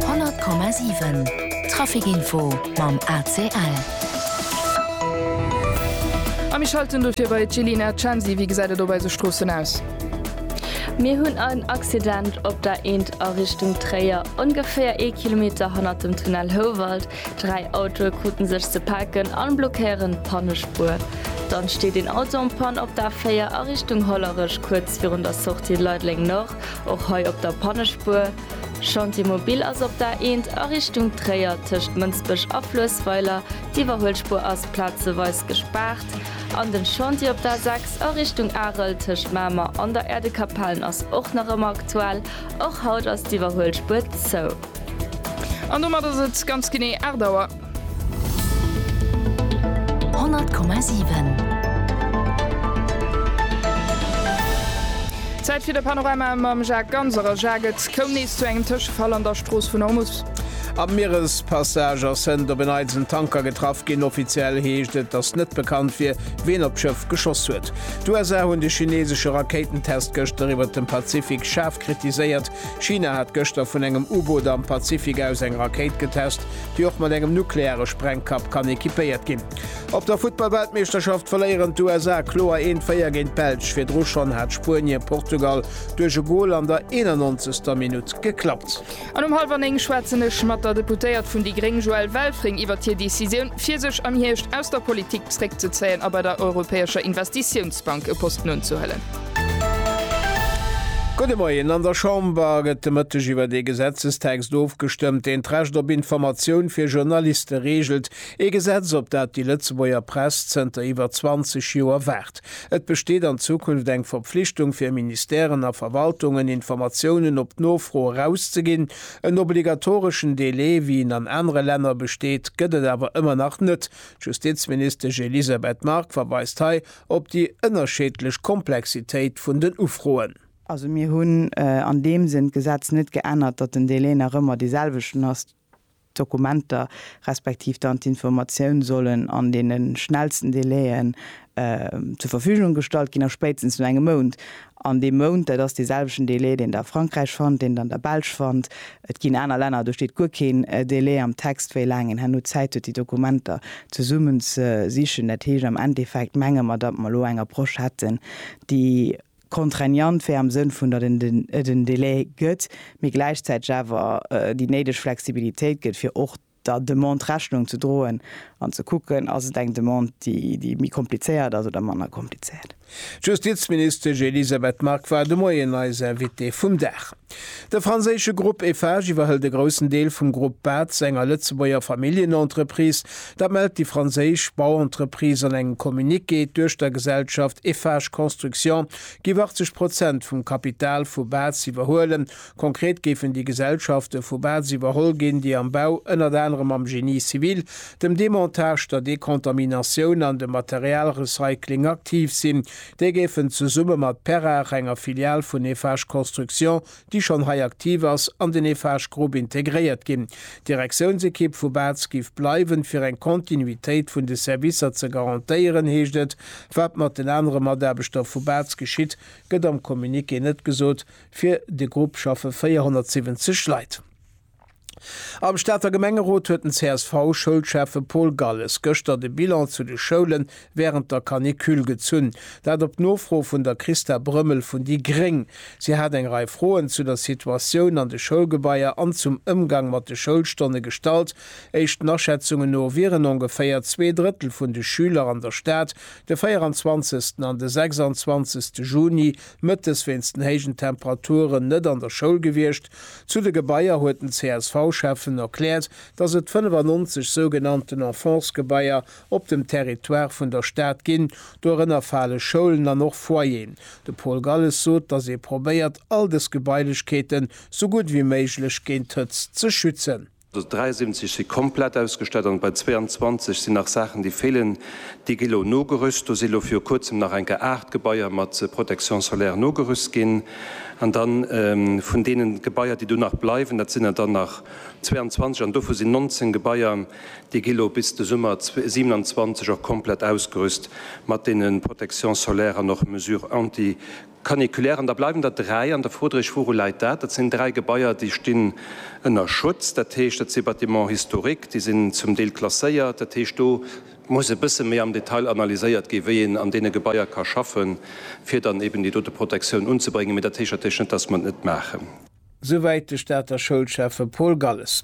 100,7 Traficinfo mam ACL. A mir schalten dofir bei d'Jelena Censi. Wéi gesäit et op eise Stroossen aus? Mir hunn en Accident op der Eent a Richtung Tréier, ongeféier ee Kilometer hannert dem Tunnel Houwald. Dräi Autoe krute sech ze paken a blockéieren d'Pannespuer. Dann steet een Auto en panne op der A4 a Richtung Hollerech, kuerz virun der Sortie Leideleng-Nord. Och hei op der Pannespuer. Chantier Mobil ass op der A1 a Richtung Tréier tëscht Mënsbech a Fluessweiler. D'Iwwerhuelspuer ass plazeweis gespaart. An den Chantier op der A6 a Richtung Arel tëscht Mamer an der Erdekapellen ass och nach ëmmer aktuell. Och haut ass d'Iwwerhuelspuer zou. An domat ass et ganz genee 8 Auer. 100,7. Zäit fir de Panorama mam Jacques Ganser. A Jacques, et koum nees zu engem Tëschefall an der Strooss vun Ormus. Am Mierespassage ass hënt op en eidelen Tanker getraff ginn. Offiziell heescht et, datt net bekannt wier, wien op d'Schëff geschoss huet. D'USA hunn de chineesesche Rakéitentest gëschter iwwert dem Pazifik schaarf kritiséiert. China hat gëschter vun engem U-Boot am Pazifik aus eng Rakéit getest. déi och mat engem nukleare Sprengkapp kann equipéiert ginn. Op der Futtballweltmeeschterschaft verléieren d'USA kloer een d'Féier géint d'Belsch. Virdru schonn hat Spuenie Portugal duerch e Gol an der 91. Minutt geklappt. An um hallwer néng schwätzen ech mat der Deputéiert vun déi gréng Joëlle Welfring iwwert hir Decisioun, fir sech am Hierscht aus der Politik zréckzezéien a bei der Europäescher Investitiounsbank e Posten unzehuelen. Gudde Moien. An der Chamber gëtt de Mëtteg iwwert ee Gesetzestext ofgestëmmt, deen d'Recht op Informatioun fir Journaliste reegelt. Ee Gesetz, op dat déi Lëtzebuerger Press zënter iwwer 20 Joer waart. Et besteet an Zukunft eng Verpflichtung fir Ministèren a Verwaltungen, Informatiounen op Nofro erauszeginn. En obligatoreschen Delai, wéi en an anere Länner besteet, gëtt et awer ëmmer nach net. D'Justizministesch Elisabeth Margue verweist hei Op déi ënnerscheedlech Komplexitéit vun den Ufroen. Also mir hunn an deem Sënn d'Gesetz net geännert, datt den Delai nach ëmmer dee selwechten ass, d'Dokumenter respektiv dann d'Informatioun sollen an deene schnellsten Delaien zur Verfügung gestallt ginn a spéitstens no engem Mount. An dee Mount, dat ass dee selwechten Delai, deen Der a Frankräich fannt, deen Der an der Belsch fannt, Et ginn aner Länner, do steet guer keen Delai am Text, wéi laang een herno Zäit huet, déi Dokumenter zesummen ze sichen. Dat heescht am Endeffekt menge mer, datt mer elo eng Approche hätten, déi contraignant wär am Sënn vun, datt et en Delai gëtt, mee gläichzäiteg awer déi néideg Flexibilitéit gëtt, fir och der Demande Rechnung ze droen an ze kucken, Ass et eng Demande, déi méi komplizéiert ass oder manner komplizéiert? D'Justizministesch Elisabeth Margue war de Moien eis Invitée vum Dag. De franséische Grupp Eiffage iwwerhëlt e groussen Deel vum Grupp Batz, enger Lëtzebuerger Familljenentreprise. Dat mellt déi franséisch Bauentreprise an engem Communiqué. D'Duechtergesellschaft Eiffage Construction géif 80 Prozent vum Kapital vu Batz iwwerhuelen, Konkret géifen déi Gesellschafte vu Baz iwwerholl ginn, déi am Bau ënnert anerem am Génie civil, dem Demontage, der Decontaminatioun an dem Materialrecycling aktiv sinn. Déi géifen zesumme mat Perrach, enger Filial vun Eiffage Construction, déi schonn hei aktiv ass, an den Eiffage Group integréiert ginn. D'Direktiounsekipp vu Baz géif bleiwen, fir eng Kontinuitéit vun de Servicer ze garantéieren, heescht et. Wat mat den anere Mataarbechter vu Baz geschitt, gëtt am Communiqué net gesot, Fir de Grupp schaffe 470 Leit. Am Stater Gemengerot huet den CSV-Schoulschäffe Paul Galles gëschter de Bilan zu de Schoule wärend der Canicule gezunn. Dat op Nofro vun der Christa Brömmel vun déi gréng. Si hat eng Rei Froen zu der Situatioun an de Schoulgebaier an zum Ëmgang mat de Schoulstonne gestallt. Éischten Aschätzungen no wieren ongeféier zwee Drëttel vun de Schüler an der Stad de 24. an de 26. Juni Mëttes wéinst den héijen Temperaturen net an der Schoul gewiescht. Zu de Gebaier huet den CSV-Schäffen erkläert, datt et 95 sougenannten Enfances-Gebaier op dem Territoire vun der Stad ginn. Dorënner fale Schoulen an och Foyeren. De Paul Galles sot, datt ee probéiert, all dës Gebailechkeeten sou gutt wéi méiglech géint d'Hëtzt ze schützen. 73 si komplett ausgestallt an bei 22 sinn nach Saachen, déi feelen. Déi gi lo nogerüst. Do si lo viru Kuerzem nach eng Kéier 8 Gebaier mat Protection solaire nogerüst ginn. An da vun deene Gebaier, déi do nach bleiwen, dat sinn der dann nach 22 an dovu sinn 19 Gebaier, déi gi lo bis de Summer 27 och komplett ausgerüst mat deene Protection solaire an och Mesures anti-canicule. Caniculaire. An da bleiwen der dräi an der Fro dréch, Wouru läit dat? Dat sinn dräi Gebaier, déi stinn ënner Schutz. Dat heescht, dat si Bâtiments historiques, déi sinn zum Deel klasséiert. Dat heescht, do muss e bësse méi am Detail analyséiert ginn, wéi een an deene Gebaier ka schaffen, fir dann eeben déi dote Protektioun unzebréngen. Mee dat heescht natierlech net, dass mer et net maachen. souwäit de Stater Schoulschäffe Paul Galles.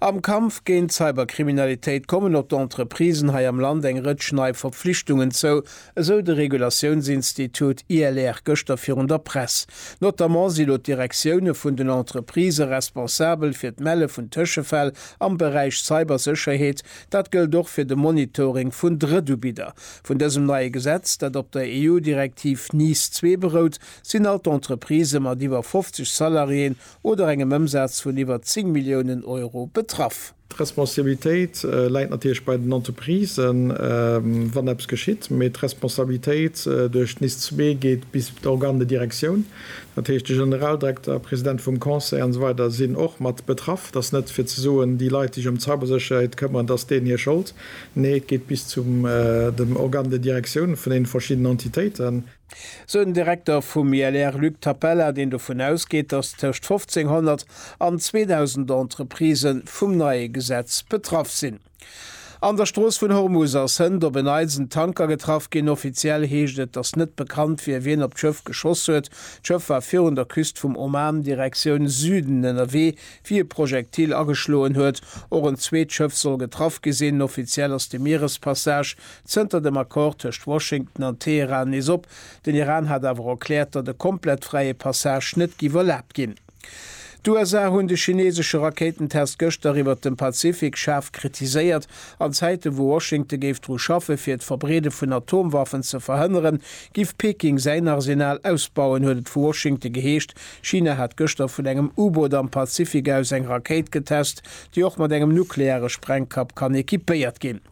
Am Kampf géint d'Cyberkriminalitéit kommen op d'Entreprisen hei am Land eng Rëtsch nei Verpflichtungen zou, esou de Regulatiounsinstitut ILR gëschter virun der Press. Notamment si lo d'Direktioune vun den Entreprisë responsabel fir d'Melle vun Tëschefäll am Beräich Cybersécherheet. Dat gëllt och fir de Monitoring vun Drëttubidder. Vun dësem neie Gesetz, dat op der EU-Direktiv NIS-2 berout, sinn all d'Entreprisë mat iwwer 50 Salariéen oder engem Ëmsaz vun iwwer 10 Milliounen Euro betraff. D'Responsabilitéit läit natierlech bei den Entreprisen, wann eppes geschitt, mee d'Responsabilitéit duerch d'NIS zwee geet bis d'Organe de direction, dat heescht de Generaldirekter, President vum Conseil an esou weider sinn och mat betraff. Et ass net fir ze soen, déi Leit, déi sech ëm d'Cybersécherheet këmmeren, et ass deenen hir Schold. Nee, et geet bis zu dem Organe de direction vun deene verschiddenen Entitéiten. sou den Direkter vum ILR Luc Tapella, deen dovun ausgeet, datt tëscht 1500 an 2000 Entreprisë vum neie Gesetz betraff sinn. An der Strooss vun Hormus ass hënt op en Eisentanker getraff ginn. Offiziell heescht et, datt net bekannt wier, wien op d'Schëff geschoss huet. D'Schëff war virun der Küst vum Oman Direktioun Süden ënnerwee, wéi e Projektil ageschloen huet. Och en zweet Schëff soll getraff gi sinn. Offiziell ass de Mierespassage Zënter dem Accord tëscht Washington an Teheran nees op. Den Iran hat awer och erkläert, datt e komplett fräie Passage net giff erlaabt ginn. D'USA hunn de chineesesche Rakéitentest gëschter iwwert dem Pazifik schaarf kritiséiert. An Zäiten, wou Washington géif dru schaffe fir d'Verbreede vun Atomwaffen ze verhënneren, giff Peking säin Arsenal ausbauen, huet et vu Washington geheescht. China hat gëschter vun engem U-Boot am Pazifik aus eng Rakéit getest, déi och mat engem nukleare Sprengkapp kann equipéiert ginn.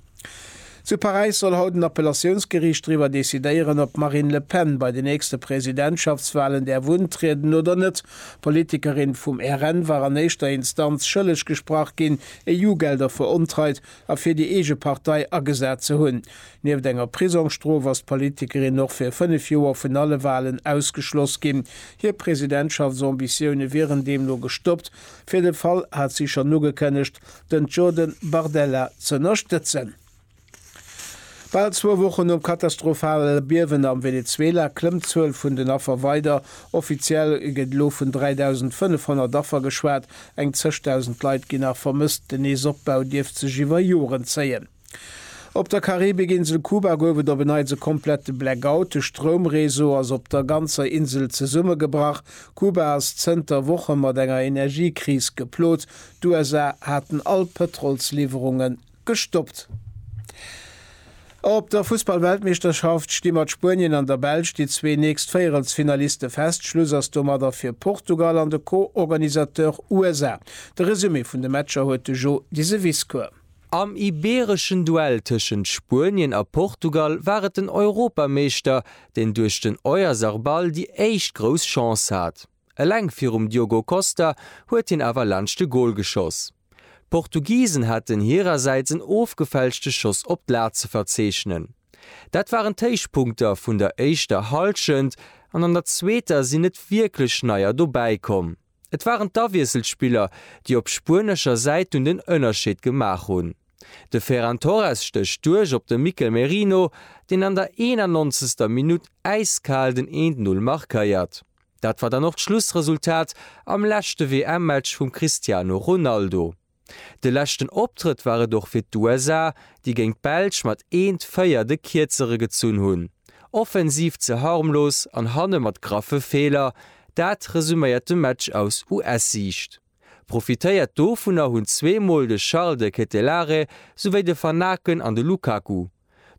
Zu Paräis soll haut en Appellatiounsgeriicht driwwer decidéieren, ob d'Marine Le Pen bei de nächste Presidentschaftswalen däerf untrieden oder net. D'Politikerin vum RN war an éischter Instanz schëlleg gesprach ginn, EU-Gelder verontreit a fir déi eege Partei agesat ze hunn. Nieft enger Prisongsstrof ass d'Politikerin och fir fënnef Joer vun alle Walen ausgeschloss ginn. Hir Presidentschaftsambitioune wieren deemno gestoppt. Fir de Fall hat si schonn ugekënnegt, den Jordan Bardella z'ënnerstëtzen. Bal zwou Wochen nom katastrophale Biewen am Venezuela klëmmt d'Zuel vun den Affer weider. Offiziell gëtt elo vun 3.500 Affer geschwat, eng zeg Dausend Leit ginn nach vermësst. Den Neesopbau dierft sech iwwer Joren zéien. Op der Karibikinsel Kuba gouf et op en Neits e komplette Blackout. De Stroumreseau ass op der ganzer Insel zesummegebrach. Kuba ass zënter Woche mat enger Energiekris geplot. D'USA haten all Pëtrolsliwwerunge gestoppt. Op der Fussballweltmeeschterschaft sti mat Spuenien an der Belsch déi zwee nächst Véierelsfinaliste fest. Schluss ass domadder fir Portugal an de Co-Organisateur USA. De Resumé vun de Matcher huet de Jo Diseviscourt. Am ibeereschen Duell tëschent Spuenien a Portugal war et den Europameeschter, deen duerch den Oyarzabal déi éischt grouss Chance hat. Eleng virum Diogo Costa huet hien awer laanscht de Gol geschoss. D'Portugisen haten hirersäits en ofgefälschte Schoss op d'Lat ze verzeechnen. Dat waren d'Héichpunkter vun der éischter Hallschent an an der zweeter sinn net wierklech Neier dobäi komm. Et waren d'Awiesselspiller, déi op spuenescher Säit dunn den Ënnerscheed gemaach hunn. De Ferran Torres stécht duerch op de Mikel Merino, deen an der 91. Minutt äiskal den Eent Null markéiert. Dat war dann och d'Schlussresultat am leschte WM-Match vum Cristiano Ronaldo. De leschten Optrëtt war et och fir d'USA, déi géint d'Belsch mat 1, 4 de Kierzere gezunn hunn. Offensiv ze harmlos an hanne mat graffe Feeler, dat resuméiert de Match aus US-Siicht. Profitéiert dovunner hunn zwee Mol de Charles de Ketelaere souwéi de Van Aken an de Lukaku.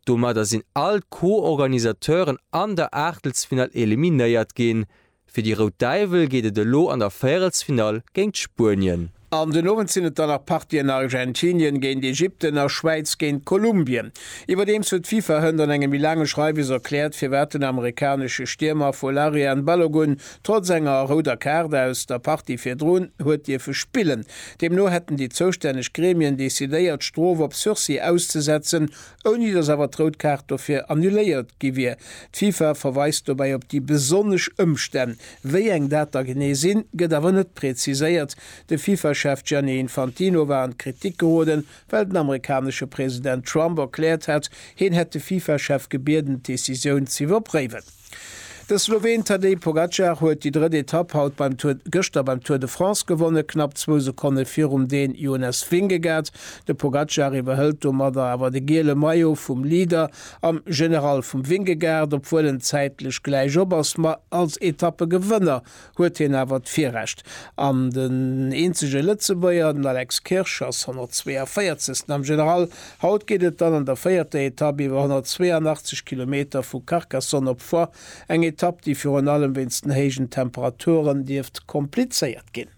Domadder sinn all d'Co-Organisateuren an der Aachtelsfinall eliminéiert ginn. Fir déi Rout Däiwel geet et elo an der Véierelsfinall géint Spuenien. An den Owend sinn et dann nach Partien an Argentinien géint Ägypten a Schwäiz géint Kolumbien. Iwwerdeems huet d'FIFA hënt an engem méi laange Schreiwes erkläert, firwat den amerikanesche Stiermer Folarin Balogun trotz enger rouder Kaart aus der Partie virdrun huet dierfe spillen. Deemno hätten déi zoustänneg Gremien decidéiert, d'Strof op Sursis auszesetzen. ouni datt awer d'Rout Kaart dofir annuléiert gi wier. D'FIFA verweist dobäi op déi besonnesch Ëmstänn. Wéi eng dat da genee sinn, gëtt awer net preziséiert. De FIFA-Chef Gianni Infantino war an d'Kritik geroden, well den amerikanesche President Trump erkläert hat, hien hätt de FIFA-Chef gebieden, d'Decisioun z'iwwerpréiwen. De Sloween Tadej Pogacar huet déi drëtt Etapp haut beim Tour gëschter beim Tour de France gewonnen, knapp zwou Sekonne virum Dän Jonas Vingegaard. De Pogacar iwwerhëlt domadder awer de giele Maillot vum Leader am General vum Vingegaard, obwuel en zäitlech gläich op ass, ma als Etappegewënner huet hien awer d'Virrecht an den eenzege Lëtzebuerger, den Alex Kirsch, ass 142. am General. Haut geet et dann an der véierter Etapp iwwer 182 Kilometer vu Carcassonne op Foix, eng Etapp, déi virun allem wéinst den héijen Temperaturen dierft komplizéiert ginn.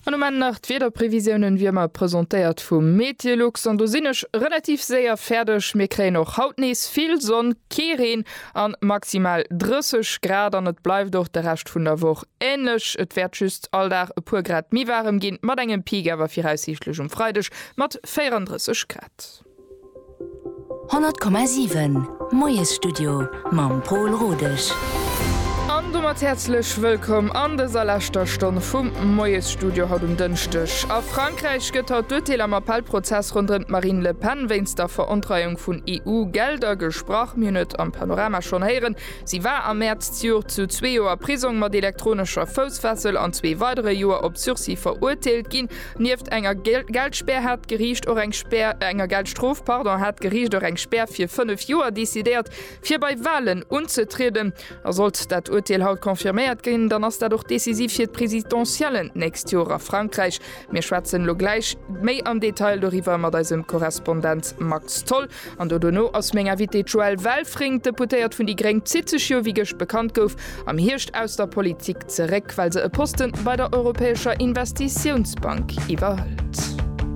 An um Enn nach d'Wiederprevisiounen wie ëmmer presentéiert vum Meteolux. An do sinn ech relativ séier fäerdeg. Mir kréien och haut nees vill Sonn, kee Reen an maximal 30 Grad. An et bleift och de Rescht vun der Woch änlech. Et wäert just all Dag e puer Grad méi waarem ginn, mat engem Peak awer viraussiichtlech um Freideg mat 34 Grad. 100,7 Moiesstudio mam Pol Rodesch. An domat häerzlech wëllkomm an dëser leschter Stonn vum Moiesstudio haut um Dënschdeg. A Frankräich gëtt haut d'Urteel am Appellprozess ronderëm d'Marine Le Pen wéinst der Verontreiung vun EU-Gelder gesprach. Mir hunn et am Panorama schonn héieren, si war am Mäerz d'Joert zu zwee Joer Prisong mat elektronescher Foussfessel an zwee weidere Joer op Sursis verurteelt ginn. Nieft enger Geldspär hat d'Geriicht och eng Spär, enger Geldstrof, pardon, hat d'Geriicht och eng Spär fir fënnef Joer decidéiert, fir bei Walen unzetrieden. A sollt dat Urteel haut confirméiert ginn, dann ass dat och decisiv fir d'Presidentiellen d'nächst Joer a Frankräich. Mir schwätzen elo gläich méi am Detail doriwwer mat eisem Korrespondent Max Tholl. An do dono ass meng Invitée d'Joëlle Welfring. D'Deputéiert vun déi gréng zitt sech jo, wéi gëscht bekannt gouf, am Hierscht aus der Politik zeréck, well se e Posten bei der Europäescher Investitiounsbank iwwerhëlt.